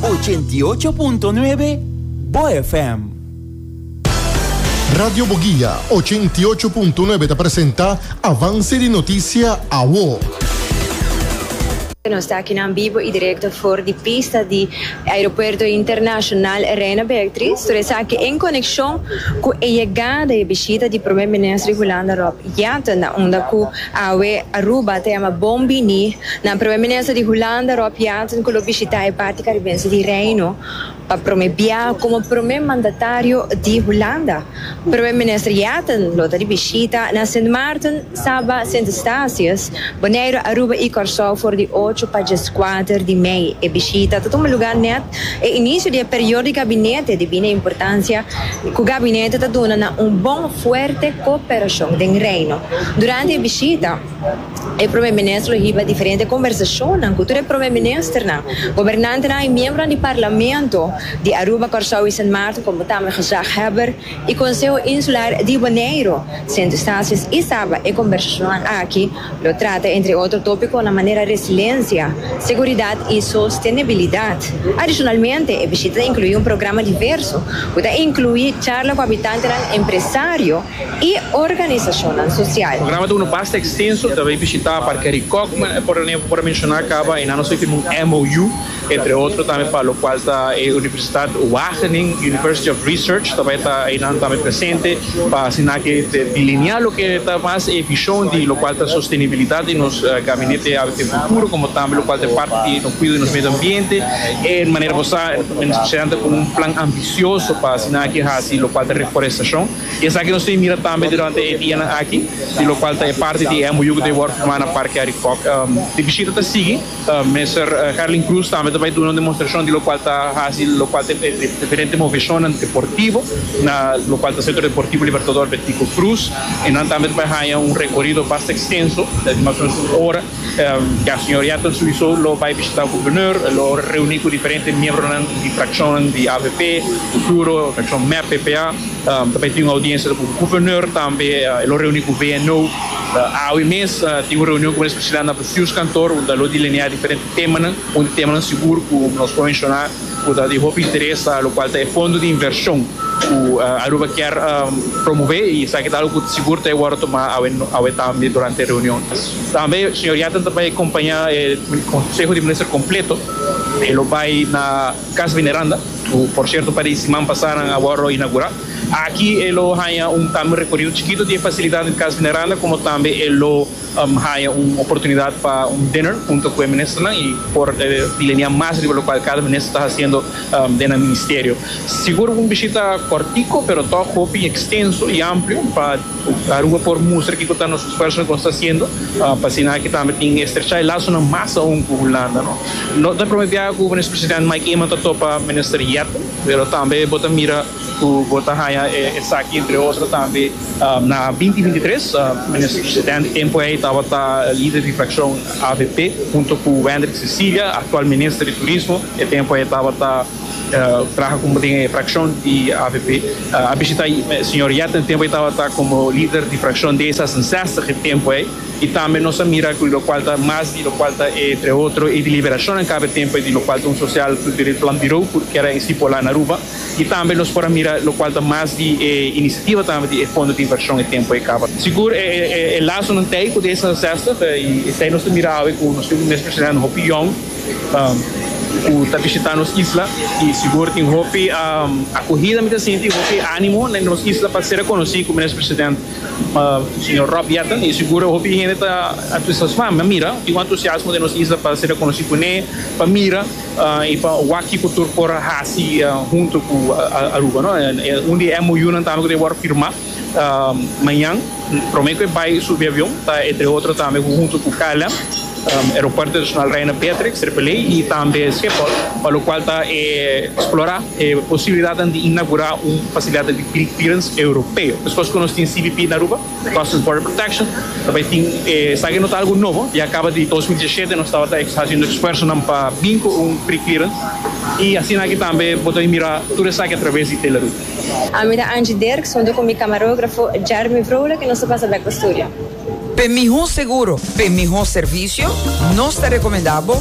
88.9 Bo FM. Radio Boguia, ochenta i ocho punto nuebe ta presenta Avance di Noticia, Awo. Nos ta akinan bibo y directo for di pista di Aeropuerto Internacional Reina Beatriz, tur esaki en coneccion cu e yegada y e bishita di Prome Minister Hulanda Rob Jetten na unda cu Awe Aruba ta yama bon bini nan Primer Minister di Hulanda Rob Jetten ku lo bishita e parti karibense di Reino pa prome bia komo prome mandatario di Hulanda. Primer Minister Jetten lo ta di bishita na Sint Maarten, Saba, Sint Eustatius, Boneiru, Aruba i Kòrsou for di ocho pa djeskwater di mei. E bishita ta tuma lugá nèt E inicio di e periodo di gabinete di bini importancia cu gabinete ta duna na un bon fuerte cooperacion den Reino. Durante e bishita, e Prome Minister lo hiba diferente conversacionnan cu tur e Prome Ministernan, gobernantenan y miembronan di Parlamento di Aruba, Corsou y Sint Maarten como tambe gezaghebber y Conseho Insular di Boneiru, Sint Eustatius y Saba. E conversacionnan aki. Lo trata entre otro topiconan manera resiliencia, seguridad y sostenibilidad. Adicionalmente, e bishita ta inclui un programa diverso cu ta inclui charla cu habitantenan, empresario y organizacionnan social. Programa ta unda basta extenso, ta bay bishita Parkery Kockman, e por ene por a menciona caba, y nan nos a firma un MOU Entre otro tambe pa lokual ta e Universitat Wageningen, University of Research, ta bai ta einan tambe presente pa asina ke ta delineá loke ta mas e bishon di lokual ta sostenibilidat di nos Gabinete Hábito y Futuro, komo tambe lokual ta e parti di nos kuido di nos medio ambiente. E manera bo sa, Minister Presidente ta ku un plan ambisioso pa asina ke hasi lokual ta reforestashon. I esaki nos tin mira tambe durante e dianan aki, di lokual ta e parti di e MOU ku ta wòrdu firmá na Parke Arikòk. E bishita ta sigui. Mester Herlin Cruz tambe ta bai duna un demonstrashon di lokual ta hasi lokual ta e diferente moveshonnan deportivo na lokual ta Sentro Deportivo Libertador Bertico Cruz i nan tambe ta bai haña un rekorido basta ekstenso di mas o menos un ora. Ya señor Yaton souiso lo bai bishitá Gobernur, e lo reuní ku diferente miembronan di frakshon di avp, futuro frakshon mep, ppa, ta bai tin un audiensia ta ku Gobernur tambe, e lo reuní ku VNO. Awe mes tin un reunion ku Minister Priscillia na. Pius Kantor un ta lo delineá diferente temanan. Un di temanan sigur ku nos por menshoná ku ta di hopi interes a lo kual ta e fondo di invershon ku Aruba kier promové i esaki ta algu ku sigur ta e wòrdu tomá awe tambe durante e reunion. Tambe señor Yatten ta bai kompañá e konseho di minister kompleto. E lo bai na Kas Veneranda ku por sierto un par di siman pasá nan a wòrdu inaugurá. Aki e lo haña un tambe un rekorido chikitu di e fasilidat di Kas Veneranda komo tambe e lo. Haña un oportunidat pa un dinner hunto ku e ministernan i por lenia mas riba lokual kada minister ta hasiendo den nan ministerio. Sigur un bishita kòrtiku pero tòg hopi ekstenso i amplio pa Aruba por mustra kiko ta nos esfuerso loke nos ta hasiendo pa asina aki tambe tin estrechá e lasonan mas aun ku Hulanda. No ta e promé biaha ku Minister Presidente Mike Eman ta topa Minister Yetten pero tambe bo ta mira Ku bo ta haña esaki entre otro tambe. Na binti binti tres, Minister Presidente Tempoey tabata Lider di Frakshon avp hunto ku Wendrick Cecilia, aktual Minister di Turismo. E tempu ei tabata traha komo den e frakshon di avp. A bishita Señor Yetna e tempu ei tabata komo Lider di Frakshon D sesensestig e tempu ei. I tambe nos a mira ku lokual ta mas di lokual ta entre otro e deliberashonnan kaba e tempu ei di lokual ta un sosial kulturel planbirou ku keda estipulá na Aruba. Y tambe nos por a mira locual ta mas di e iniciativa tambe di e fondo di inversion e tempo e caba. Sigur e lazonan tey cu desa zestig y esey nos ta mira awe cu nos tin un expresidente hopi yong cu ta bishita nos isla y sigur tin hopi acuhida mi ta sinti y hopi animo den nos isla pa ser reconoci como expresidente señor Rob Jetten y sigur hopi hende ta entusiasma. Mi a mira tin un entusiasmo den nos isla pa ser reconoci cu ne pa mira. I pa wak-i ku tur por a hasi huntu ku Aruba. Un di e MOUnan tambe ku ta wòrdu firmá mañan. Promé ku e bai subi avion ta entre otro tambe ku huntu ku KLM, Aeropuerto Internashonal Reina Beatrix, Tripoli, i tambe Schiphol, pa lokual ta eksplorá e posibilidatnan di inagurá un fasilidat di kripirens europeo. Deskos ku nos tin CBP na Aruba, Customs Border Protection ta bay tin esaki no ta algo nobo ya caba di dos mil diesisiete nos tabata ex haciendo esfuerzonan pa bin cu un preclearance y asina aki tambe bo ta bay mira tur esaki a traves di Teleroo. A mi ta Angie Dirks hunto cu mi camarografo Jeremy Vrolijk y nos ta pasa bek pa studio. P'e miho seguro, p'e miho servicio, nos ta recomenda bo